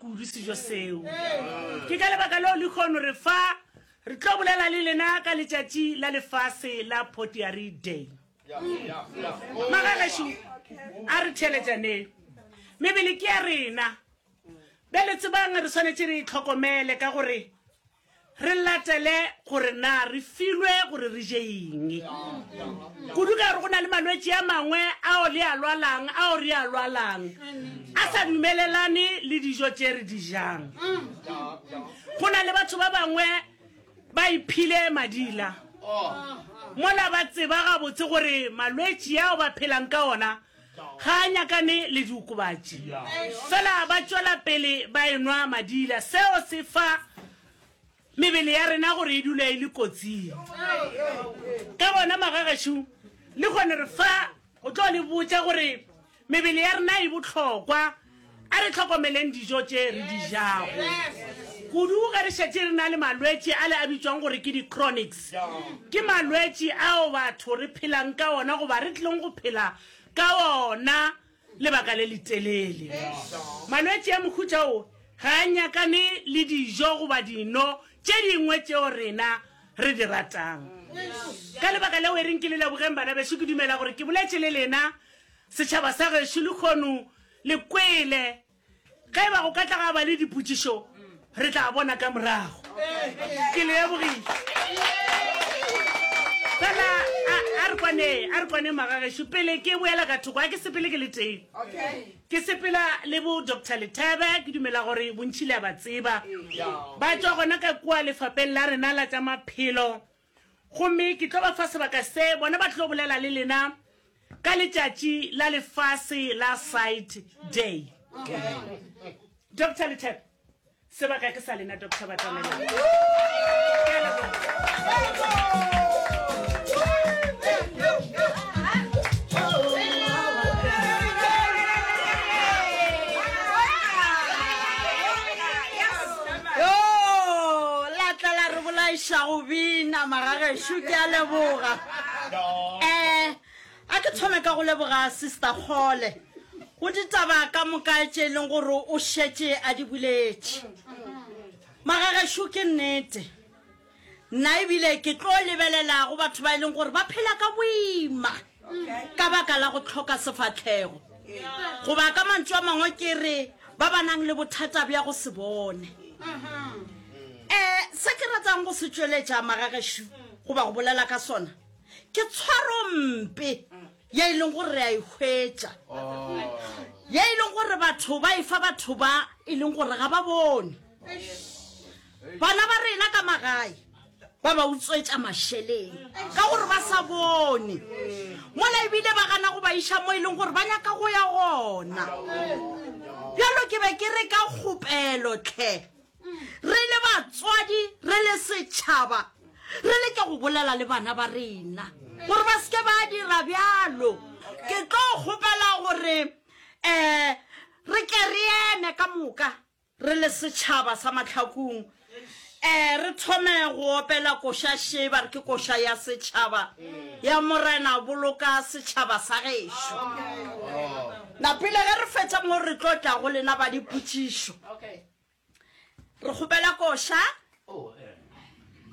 Kudu sejo seo. Ke ka lebaka leo lekhono re fa re tlo bolela le lena ka letšatši la lefase la Potiari Day. Magagešu, a re theeletšaneng. Mebele ke ya rena. Bjale tsebang re swanetše re e tlhokomele ka gore Re latele gore na re filwe gore re je eng. Kudu ka gore go na le malwetši a mangwe ao le a lwalang, ao re a lwalang, a sa dumelelane le dijo tše re di jang. Go na le batho ba bangwe ba iphile madila mola ba tseba gabotse gore malwetši ao ba phelang ka ona Ga a nyakane le diokobatši. Fela ba tšwela pele ba enwa madila. Seo se fa mebele ya rena gore e dula e le kotsing. Ka gona, magagešo, le kgone re fa go tlo le botša gore mebele ya rena e bohlokwa. A re hlokomeleng dijo tše re di jago, kudu ge re šetše re na le malwetši ale a bitšwago gore ke di-chronics. Ke malwetši ao batho re phelang ka ona goba re tlileng go phela ka ona lebaka le letelele. Malwetši a mohuta wo ga a nyakane le dijo goba dino tše dingwe tšeo rena re di ratang. Ka lebaka leo, e reng ke le lebogeng bana bešo. Ke dumela gore ke boletše le lena Setšhaba sa gešo lekhono le kwele. Ge e ba go ka tla ga ba le dipotšišo, re tla bona ka morago. Ke lebogile. Fela a re kwane, a re kwane magagešo. Pele ke boela ka thoko, a ke sepele ke le tee. Ke sepela le bo Doctor Lethebe, ke dumela gore bontši le a ba tseba. Ba tšwa gona ka kua lefapeng la rena la tša maphelo. Gomme ke tlo ba fa sebaka se bona ba tlo bolela le lena ka letšatši la lefase la Sight Day. Doctor Lethebe, sebaka ke sa lena, Doctor Batamela. Yoo, la tla la re bolaiša go bina, magagešo, ke a leboga. Eh, a ke thome ka go leboga Sister Kgole go ditaba ka moka tše e leng gore o šetše a di boletše. Magagešo, ke nnete. Nna ebile ke tlo lebelela go batho ba e leng gore ba phela ka boima ka baka la go tlhoka sefatlhego, goba ka mantšu a mangwe ke re ba ba nang le bothata bja go se bone. Um Se ke ratang go se tšweletša magagešu goba go bolela ka sona ke tshwarompe. ye e leng gore re a e hwetša, ye e leng gore batho ba e fa batho ba e leng gore ga ba bone. Bana ba rena ka magae ba ba utswetša mašeleng ka gore ba sa bone, mola ebile ba gana go ba iša mo e leng gore ba nyaka go ya gona. Bjalo ke be ke re ka kgopelo tlhe Re le batswadi, re le setšhaba, re leke go bolela le bana ba rena gore ba seke ba dira bjalo. Ke tlo kgopela gore um re ke re eme ka moka re le setšhaba sa Mahlakung, um re thome go opela koša še ba re ke koša ya setšhaba ya Morena, boloka setšhaba sa gešo. Na pele ge re fetša mo re tlo tla go lena ba dipotšišo. Re kgopela koša.